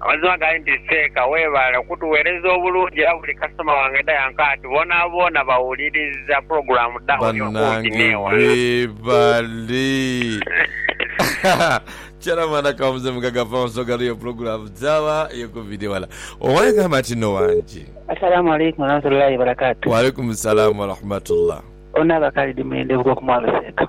Amazima gali nti Seeka weebale okutuweereza obulungi era buli kasitoma wange dha yanka ati boonaboona bawuliriza pulogulaamu dha Oli Okumpi Banange N'ewala. webale chairman akawa mzee mugaga power nsonga lwaiyo pulogulaamu dha Oli Okumpi N'ewala. Owange gamba nti nno wange. Asalamu alaikum warahmatullahi wabarakatuh. Waalaikum salaam warahmatullah. Ono aba Khalid Mwende Bugoku Mwami Seeka.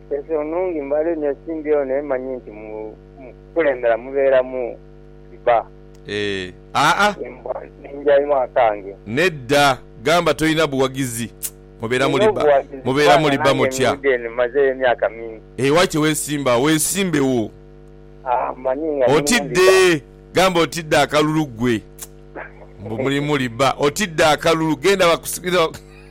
Ensi nnungi mbale inho esimbi eno emanyi nti mukukulembera mubeera mu Shibah. Eeh aa. Embwa ninjainwa akange. Nedda gamba tolina buwagizi mubeera Nina muli ba obuwagizi mubeera kubanga muli ba nange mutya. nidha eno mazeeyo emyaka mingi. Eeh waki wesimba agho wesimbe wo. Aa mmanyi nga muli muli Otidde ba. gamba otidde akalulu gwe. Mbu muli muli ba otidde akalulu genda bakusigire.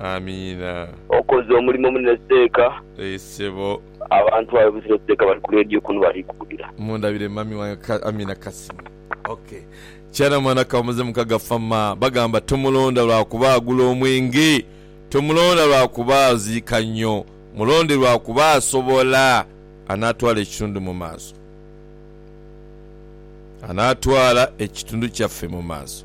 Amiina. Okoze omulimo munene seeka. Eeh sebo. Abantu abo buzira seeka bali ku radio kunu bali kuwulira. Mundabire mummy wange ka Amina Kasimo ok kyana mwana kamuze mukaga fama bagamba tomulonda lwakuba agula omwenge tomulonda lwakuba aziika nyo mulonde lwakuba asobola anatwala ekitundu mumaaso anatwala ekitundu kyaffe mumaaso.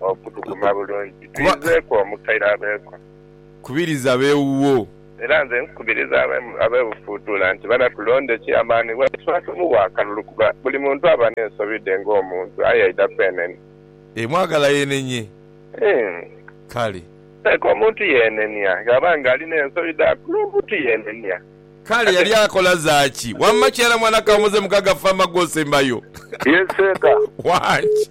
Okutuguma bulungi. Tuyizeeku omukaire abeeko. Kubiriza ab'ewuwo. Era nze nkukubiriza ab'e Bufuutuula nti banatulonde ki amaani bwati twatumuwa akalulu kuba buli muntu aba n'ensobi dhe ng'omuntu aye aidha kwenenia. Emwagala yenenye. Ii. Kale. Leka omuntu yenenia ghaba nga ali n'ensobi dha kulu omuntu yenenia. Kale yali akola zaaki? Wamma kighalamu anakaamuza emugaga ffa amaggwa osembayo. Ye seeka. Wangi.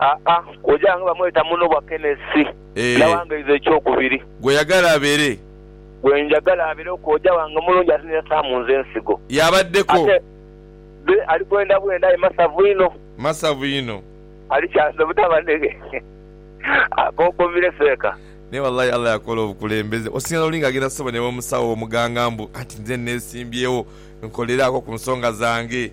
Aa, oja nga bamweta muno bwa Kenesi. Eeh. Nawangaiza ekyokubiri. Gw'oyagala abeere. Gwe njagala abereku oja wange omulungi ate n'eyasaamu nze ensigo. Y'abaddeko. Ate be ali bwenda bwenda aye masavu inho. Masavu inho. Ali kyanze butaba neghe. Akonkomire seeka. Naye walayi Allah yakola obukulembeze. Osinga n'oli nga agenda sebo n'ew'omusawo, ew'omuganga mbu, anti nze nneesimbyewo nkolereako ku nsonga zange.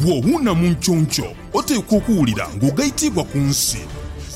Bw'owuuna mu nkyonky, oteekwa okuwulira ng'ogaitiibwa ku nsi.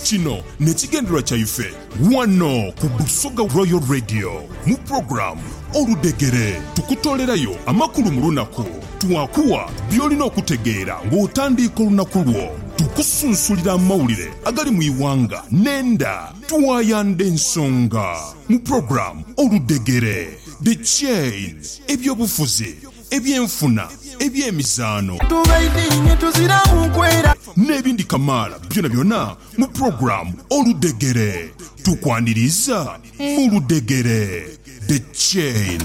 Kino n'ekigendererwa kyaife wano ku Busoga Royal Radio. Mu pulogulaamu Oludhegere, tukutoolerayo amakulu mu lunaku. Twakuwa by'olina okutegeera ng'otandiika olunaku lwo. Tukusunsulira amawulire agali mu ighanga n'enda. Twayandha ensonga mu pulogulaamu Oludhegere, The Chain, eby'obufuzi, eby'enfuna, eby'emizaano, Tubaidhiinhe tuziramu kwera. n'ebindi kamaala byonabyona mu pulogulaamu Oludhegere. Tukwaniriiza mu Ludhegere, The Chain.